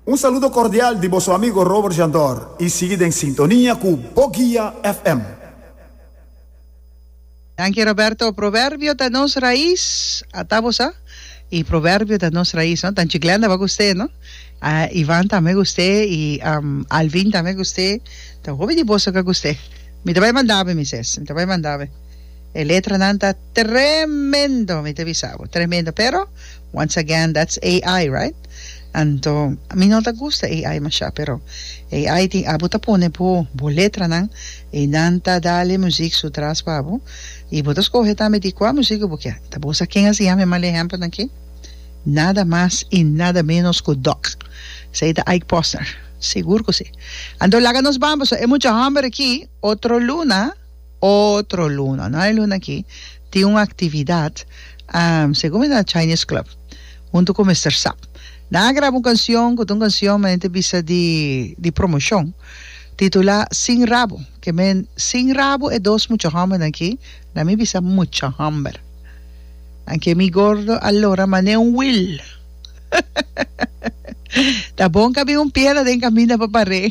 Un saludo cordial di boso amigo Robert Jandor y sigui den sintonia cu Bo Guia FM. Danki Roberto, proverbio ta nos rais a ta bosa y proverbio ta nos rais no tanchi Glenda ba guste no Ivan tambe guste y Alvin tambe guste ta hopi di boso ka guste mi ta bay mandabe mi ses mi ta bay mandabe e letra nan ta tremendo mi ta bisa bo tremendo pero Once again that's AI right? Anto mi no ta gusta AI masha pero AI tin abo ta pone bo bo letranan y nan ta dale muzik su tras pa bo y bo ta scoge tambe di cua muzik cu bo kier ta bo sa ken a siña mi mal ehemplonan aki? Nada mas y nada menos cu Doc esey ta Ike Posner segur cu si anto laga nos bamboso e mucha homber aki otro luna. Otro luna, no e luna aki, tin un actividad, segun mi ta Chinese Club, hunto cu Mister Sap. Nan a graba un cancion cu ta un cancion men ta bisa di di promocion, titula Sin Rabo, ke men sin rabo e dos mucha hombernan aki, na mi bisa mucha homber, nan ke mi gordo a lora mane un wil, ta bon ka bin un piedra den caminda pa bar'e.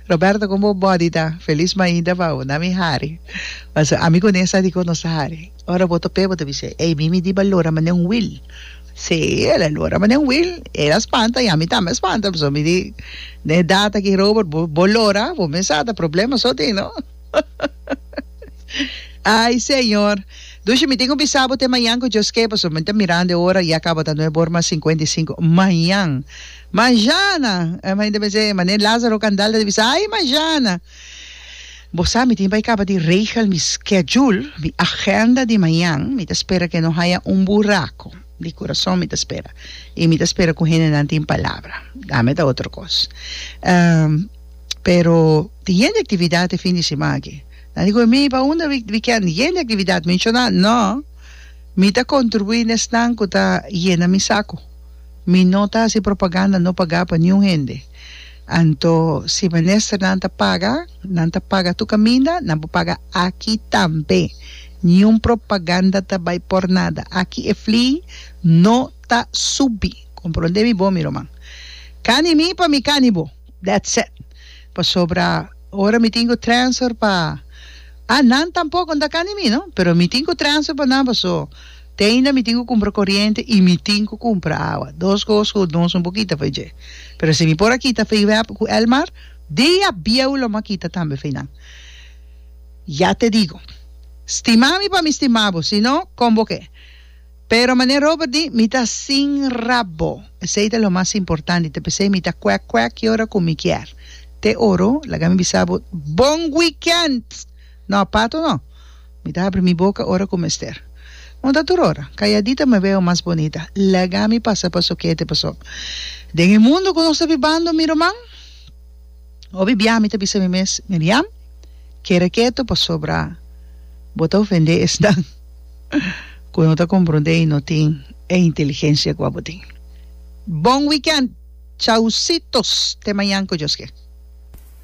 Roberto con bo body ta feliz mainda pa bo na mi hari pasobra ami cu Nessa di con nos ta hari ora bo ta pe bo ta bisa ey mimi di ba lora mane un wil si ela lora mane un wil ela spanta y ami tambe a spanta pasobra mi di na edad aki Robert bo bo lora bo mes sa ta problema so tin no ay señor dushi mi tin cu bisa bo te mañan cu Dios ke pasobra mi ta mirando e ora ya caba ta nuebe ora mas cincuenta y cinco mañan Manjana! E hende mester, manera Lazaro Kandal ta bisa, Ay, manjana! Bo sa, mi tin bai kaba di regel mi skedul, mi agenda di mañan, mi ta spera ke no haya un buraku. Di kurason mi ta spera. I mi ta spera ku hendenan tin palabra. Dame ta otro kos. Pero tin yen di aktividat e fin di siman aki. Nan di ku mi, pa unda mi ken? Yen di aktividat, menshona? No. Mi ta kontribuí nesnan ku ta yena mi saku. Mi no ta hasi propaganda no pagá pa niun hende. Anto si menesternan ta paga, nan ta paga tur kaminda, nan por paga aki tambe. Niun propaganda ta bai por nada. Aki e flí no ta subi. Komprondé mi bo, mi ruman. Kani mi pa mi kani bo. Dèt sèt. Pasobra ora mi tin ku trènsfer pa, a nan tampoko no ta kani mi no, pero mi tin ku trènsfer pa nan paso. Teinda mi tin cu cumpra coriente y mi tin cu cumpra awa. Dos cos cu nos no por kita fei dje. Pero si mi por a kita fei web cu Elmar, dia bieu lo mi a kita tambe fei nan. Ya te digo. Stima mi pa mi stima bo, si no, con bo ke. Pero mane Robert di, mi ta sin rap bo. Esey ta lo mas importante. Ta pesey mi ta kwek kwek y ora cu mi kier. Te oro, laga mi bisa bo, bon weekend! No, Pato no. Mi ta habri mi boca ora cu mester. Con ta tur ora. Cayadita me veo mas bonita. Laga mi pasa pa Soquete paso den e mundo cu nos ta bibando mi roman o bibia mi ta bisa mi mes, Miriam, keda keto pasobra bo ta ofende esnan cu no ta compronde y no tin e inteligencia cu abo tin. Bon weekend! Chaucitos! Te mañan cu Dios ke.